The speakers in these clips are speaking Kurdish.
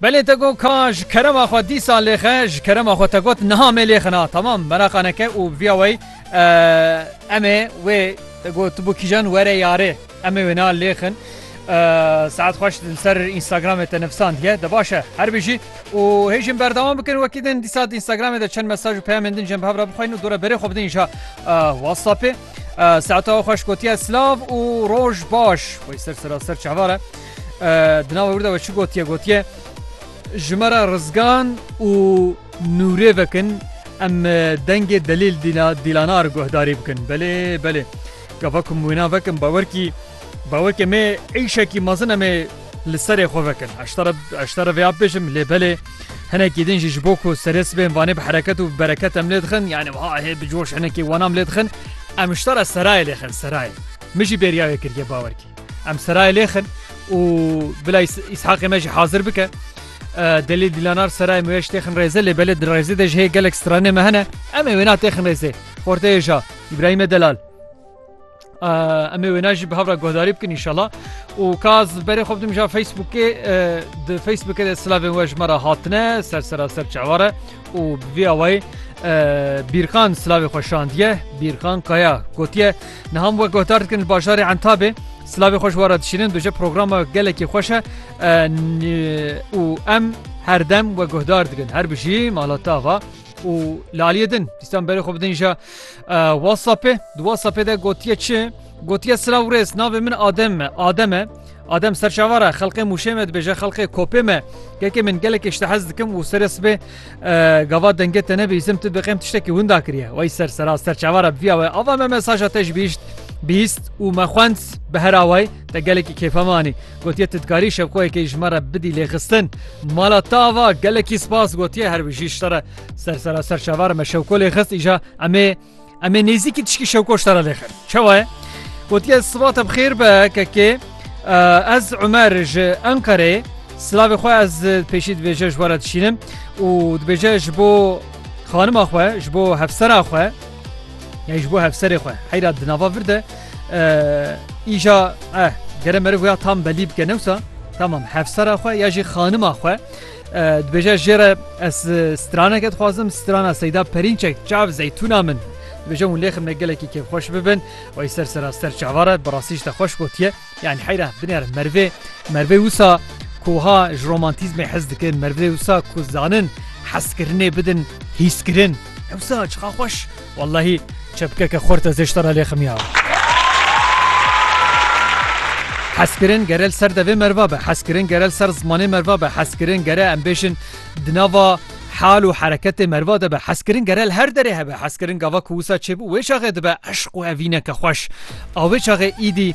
Belê te got ka ji kerema xwe dîsa lêxe ji kerema xwe te got niha me lêxina tamam meraqa neke û viya wey em ê wê te got tu bû kîjan were yarê em ê wê na lêxin saet xweş li ser Instagramê te nivsandiye de baş e her bijî û hêjin berdewam bikin wekî din dîsa Instagramê de çend mesaj û peyamên din jin bi hev re bixwîn û dore berê xwe bidin îşa WhatsAppê saeta xweş gotiye silav û roj baş xwe ser sera ser çavare Di nava wir de we çi gotiye gotiye ji me re rizgan û nûrê vekin em dengê delîl dîlanar guhdarî bikin belê belê gava ku wêna vekin bawerkî bawerkê me êşekî mezin em ê li serê xwe vekin eşta re vêya bêjim lê belê hinekî din jî ji bo ku serê sibên vanê bi hereket û bereket em lê dixin yani ha hê bi coş hinekî wanam lê dixin em ji te re serayê lêxin serayê min jî bêriyayê kiriye bawerkî Em serayê lêxin û bila Îshaqê me jî hazir bike. Delî dîlanar serayê me ji têxin rêze lê belê di rêzê de ji hê gelek stranê me hene em ê wêna têxin rêzê. Xorteyê ja İbrahim'e Delal. Em ê wêna jî bi hevra guhdarî bikin inşallah û kaz berê xwe bidim ja Facebookê di Facebookê de silavên we ji me re hatine ser sera ser çeware û bi vî awayî Bîrkan silavê xwe şandiye, Bîrkan Kaya gotiye, Niha min wek guhdar dikin li bajarê Entabê silavê xwe ji we re dişînin, duje programa gelekî xweş e û em herdem we guhdar dikin. Her bijî mala te ava. û li aliyê din dîstan berê xwe bidin jî WhatsAppê di WhatsAppê de gotiye çi? Gotiye silav rêz navê min Adem me Adem e. Adem serçavara xelqê mûşê me dibêje xelqê kopê me kekê min gelekê ji te hez dikim û serê sibê gava dengê te nebê îzim tu biqêm tiştekî winda kiriye wey ser sera serçavara biviya we ava me mesaja te ji bîşt bîst û me xwend bi hera wey te gelekî kêfe manî gotiye tu dikarî şevxoyekê ji me re bidî lê xistin mala te ava gelekî spas gotiye her bijî ji te re ser sera serçavara me şevko lê xist îja emê Em ê nêzîkî tişkî şewko ji te re lêxir. Çawa ye? Gotiye siva te bixêr be kekê ez Umer ji Enqerê silavê xwe ez pêşî dibêje ji were dişînim û dibêje ji bo xanima xwe ji bo hevsera xwe ya ji bo hevserê xwe heyra di nava vir de îja eh gere meriv ya tam belî bike newsa tamam hevsera xwe ya jî xanima xwe Dibêje jê re ez straneke dixwazim strana Seyda Perînçek çav zeytûna min. Dibêje hûn lêxim me gelekî kêfxweş bibin wayî ser sera ser çava re bi rastî ji te xweş gotiye yanî heyra binêr merivê merivê wisa koha ji romantîzmê hez dikin merivê wisa ku zanin hezkirinê bidin hîskirin hewsa çixa xweş Wellahî çepkeke xorte zê ji te re lê ximiyawa. Hezkirin gerel ser devê merva be, hezkirin gerel ser zimanê merva be, hezkirin gere em bêjin di nava hal û hereketê merva de be, hezkirin gerel her derê hebe, hezkirin gava ku wisa çêbû wê çaxê dibe eşq û evîneke xweş. A wê çaxê îdî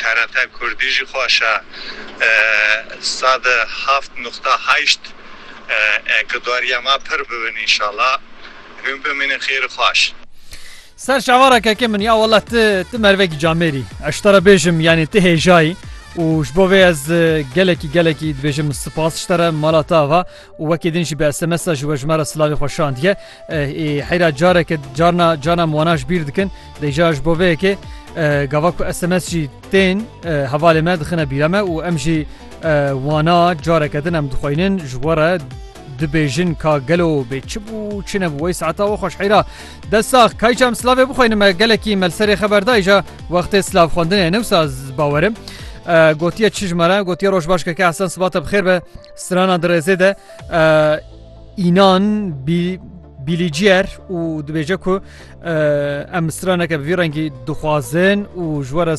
TRT Kurdî jî xweşe sed û heft nuqta heşt e gudarîya me pir bibin înşallah hûn bimînin xêr û xweş. Ser şevara keke min ya wela ti ti mervekî camêrî ez ji te re bêjim yanî ti hêjayî û ji bo vê ez gelekî gelekî dibêjim spas ji te re mala te ava û wekî din jî bi SMS-a ji we ji me re silavê xwe şandiye. Ê heyra careke carna carna em wana ji bîr dikin. Dê jara ji bo vê yekê gava ku SMS jî tên hevalê me dixine bîra me û em jî wana careke din em dixweynin ji we re dibêjin ka gelo bê çi bû çi nebû wey saeta we xweş heyra. Desax kayca em silavê bixweynin me gelekî melserê xeber dayja wextê silav xwendinê newsa bawerim. Gotiye çi ji me re gotiye roj baş keke Hesen sibate bi xêr be. Strana dirêzê de înan bî Bîlîciyer û dibêje ku em straneke bi vî rengî dixwazin û ji we re